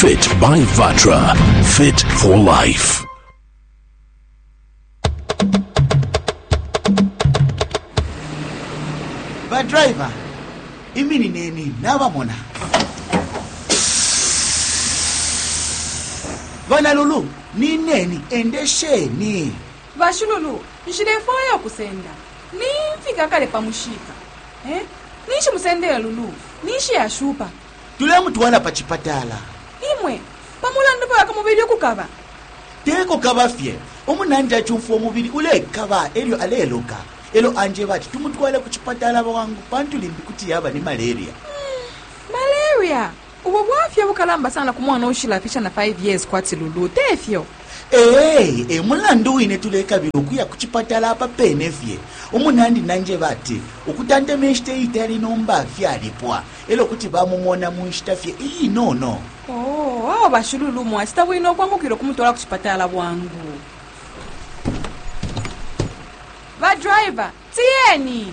Fit by Vatra. Fit for life. badriver iminineni nabamona bana lulu nineni endesheni bashululu nshilefwaya ukusenda nimfika kale pa mushika eh? ninshi musendele lulu ninshi yashupa tulemutwala pa cipatala imwe pamulandu paka mubili ukukaba teko kaba fye umunandi acumfwa umubili ulekaba elyo aleloka elo anjeba ati tumutwale ku cipatala bwangu pantu limbi kuti yaba ni malaria malaria Ubu bwafya bukalamba sana ku mwana uushilafisha na 5 years kwati Lulu, te fyo? Ee, e mulandu wine tulekabila ukuya ku cipatala apa pene fye. Umunandi nanjeba ati ukutantema inshita iitali nomba fyalipwa e lyo kuti bamumona mu nshita fye iinono. Oo, awe ba Shululu mwacita bwino ukwangukila ukumutwala ku cipatala bwangu. Ba driver, tiyeni!